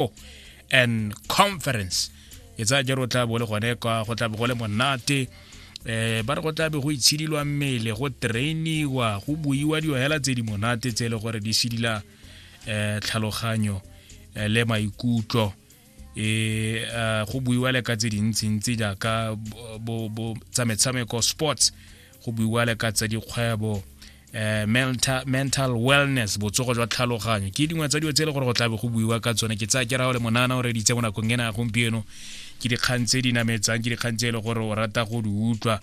Expo and Conference ke tsaya jalo tla bo le gone kwa go tla bo go le monate eh ba re go tlabe go itshidilwa mmele go trainiwa go buiwa dio hela tse di monate tse le gore di sidila eh tlhaloganyo eh, le maikutlo e eh, go buiwa le ka tse dintsi ntsi jaaka bo bo tsa metshameko sports go buiwa le ka tsa dikgwebo eh, mental, mental wellness botsogo jwa tlhaloganyo ke dingwe tsa dilo tse e le gore go tlabe go buiwa ka tsone ke tsaya ke rao le monana o reditse mo nakong ena ya gompieno ke dikgang tse di nametsang ke dikgang tse e le gore o rata go di utlwa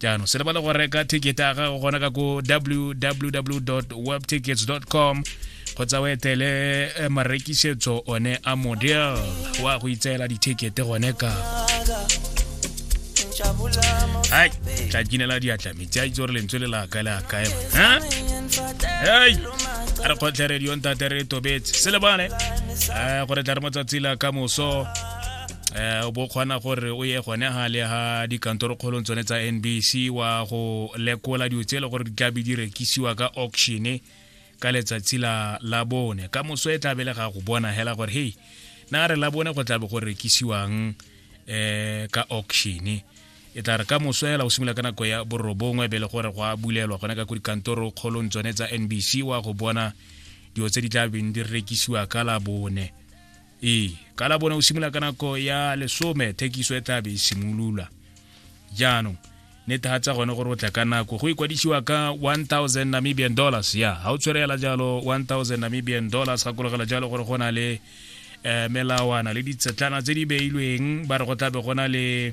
jaanong se lebale go reka ticket ya gago gona ka ko www webtickets com kgotsa o etele eh, marekisetso one a model wa go itseela dithekete gone ka hai tla kinela diatla itse a itse gore lentswe le la kae le a kae hei a re kgotlhe radio ntate re tobetse se le bone um gore tla re motsatsi la ka moso um o bo kgona gore o ye gone ga le ga dikantorokgolong tsone tsa nbc wa go lekola dilo tse e le gore di tlabe di rekisiwa ka auctione ka letsatsi la la bone ka moso e tlabe le ga go bona hela gore hei na re la bone go tlabe go rekisiwang um ka auctione e tla re ka moso fela o simolola ka nako ya borobongwe be le gore go a bulelwa gone ka ko dikantoro kgolong tsone tsa nbc wa go bona dilo tse di tla beng di rekisiwa ka la bone ee ka la bone o simolola ka nako ya lesome thekiso e tla be e simolola jaanong netegatsa gone gore o tla ka nako go ikwadisiwa ka 1000 namibian dollars ya ga o tshwerela jalo 1000 namibian dollars gakologela jalo gore go na le um melawana le ditsetlana tse di beilweng ba re go tlabe go na le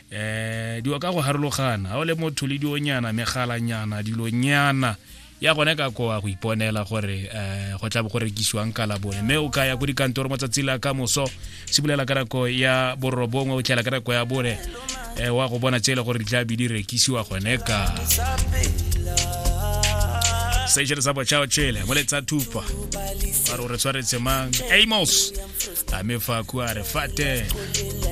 eh diwa ka go harologana ga o le motho le dionyana megalanyana dilonyana ya gone ka koa go iponela gore um go tla bo go rekisiwang ka labone mme o ka ya ko dikantoro mo tsatsi la ka moso se bulela ka nako ya borobongwe o tlhela ka nako ya bone um wa go bona tse e le gore di tla be di rekisiwa gone ka sešere sa botšhao tšele mo letsa thupa a re o re tshwaretse mang amos a mefa kua re fate